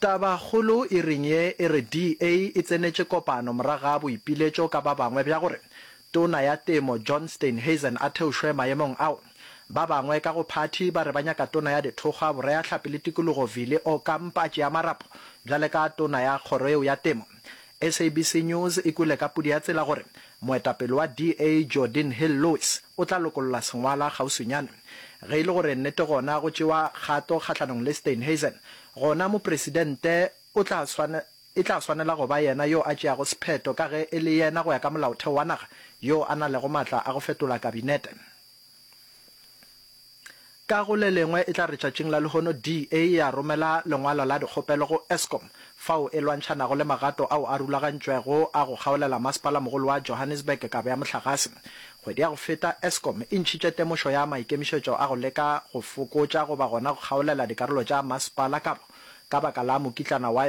Tabakgolo e reng ye e re DA e tsenetše kopano morago ga boipiletšo ka ba bangwe bja gore Tona ya Temo John Steenhuisen a theošwe maemong ao? Ba bangwe ka go phathi ba re ba nyaka Tona ya Dithokgwa, Boreahlapi le Tikologo Vili Okampa Tšeamarapo bjale ka Tona ya kgoro yeo ya Temo. SABC News e kwele ka pudi ya tsela gore moetapele wa DA Jordin Hill-Lewis o tla lokolla sengwala kgauswinyane. Ge e le gore nnete gona go tšewa kgato kgahlanong le Steenhuisen, gona mopresidente o tla swane, e tla swanela go ba yena yo a tšeago sephetho ka ge e le yena go ya ka molaotheo wa naga yo a na lego matla a go fetola kabinete. Ka go le lengwe e tla re tšatšing la lehono DA ya romela lengwalo la dikgopelo go Eskom fao e lwantšhanago le magato ao a rulagantšwego a go kgaolela masepala-mogolo wa Johannesburg kabo ya mohlagase. Kgwedi ya go feta, Eskom e ntšhitše temošo ya maikemišetšo a go leka go fokotša goba gona go kgaolela dikarolo tša masepala kabo ka baka la mokitlana wa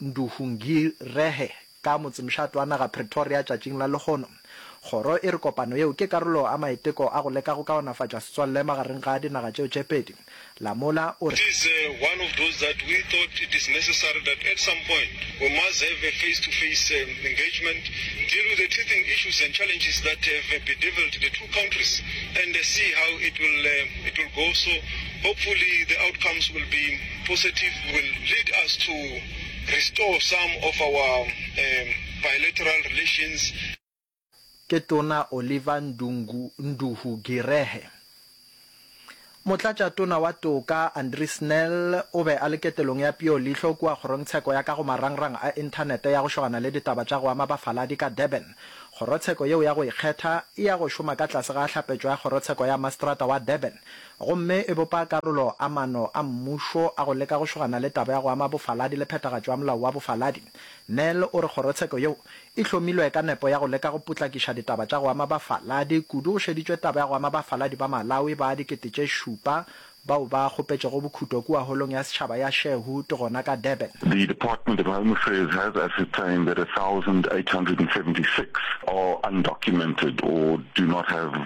Nduvhungirehe ka motsemšat wa naga Pretoria tšatšing la lehono. Kgoro e re kopano yeo ke karolo a maiteko a go leka go kaonafatša setswalle magareng ga dinaga tšeo tše pedi. Lamola o re. Hopefully the outcomes will be positive will lead us to restore some of our um bilateral relations. Ke Tona Oliver Ndungu Nduhu Girehe. Motlatša Tona wa Toka Andri Snell o be a le ketelong ya peo leihlo kua kgorongtsheko ya ka go marangrang a inthanete ya go šogana le ditaba tša go ama bafaladi ka Durban. Kgorotsheko yeo ya go ikgetha e ya go šoma ka tlase ga hlapetšo ya kgorotsheko ya mastrata wa Durban, gomme e bopa karolo a mano a mmušo a go leka go šogana le taba ya go ama bofaladi le phethagatšo ya molao wa bofaladi. Nel o re kgorotsheko yeo e hlomilwe ka nepo ya go leka go potlakiša ditaba tša go ama bafaladi, kudu go šeditšwe taba ya go ama bafaladi ba Malawi ba dikete tše šupa bao ba kgopetšego bokhuto kua Holong ya Setšhaba ya Sherwood gona ka Durban. The Department of Home Affairs has ascertained that a thousand eight hundred and seventy six are undocumented or do not have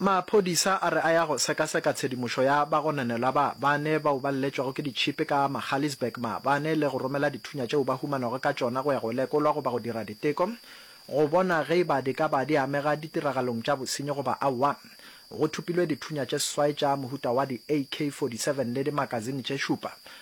Maphodisa a re a ya go sekaseka tshedimošo ya bagononelwa ba bane bao ba lletšwego ke ditšhipi ka Magaliesburg maabane le go romela dithunya tšeo ba humanago ka tšona go ya go lekolwa goba go dira diteko go bona ge e ba di ka ba di amega ditiragalong tša bosenyi goba aowa. Go thopilwe dithunya tše seswai tša mohuta wa di AK-47 le dimakazine tše šupa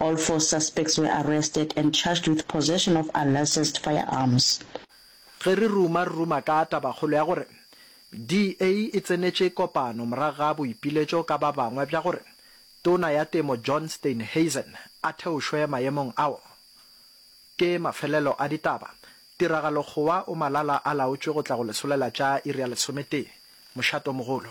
All four suspects were arrested and charged with possession of unlicensed firearms. Ge re ruma, re ruma ka tabakgolo ya gore DA e tsenetše kopano morago ga boipiletšo ka ba bangwe bja gore Tona ya Temo John Steenhuisen a theošwe maemong ao. Ke mafelelo a ditaba. Tiragalo-kgowa o malala a laotšwe go tla go lesolela tša iri ya lesometee. Mošato mogolo.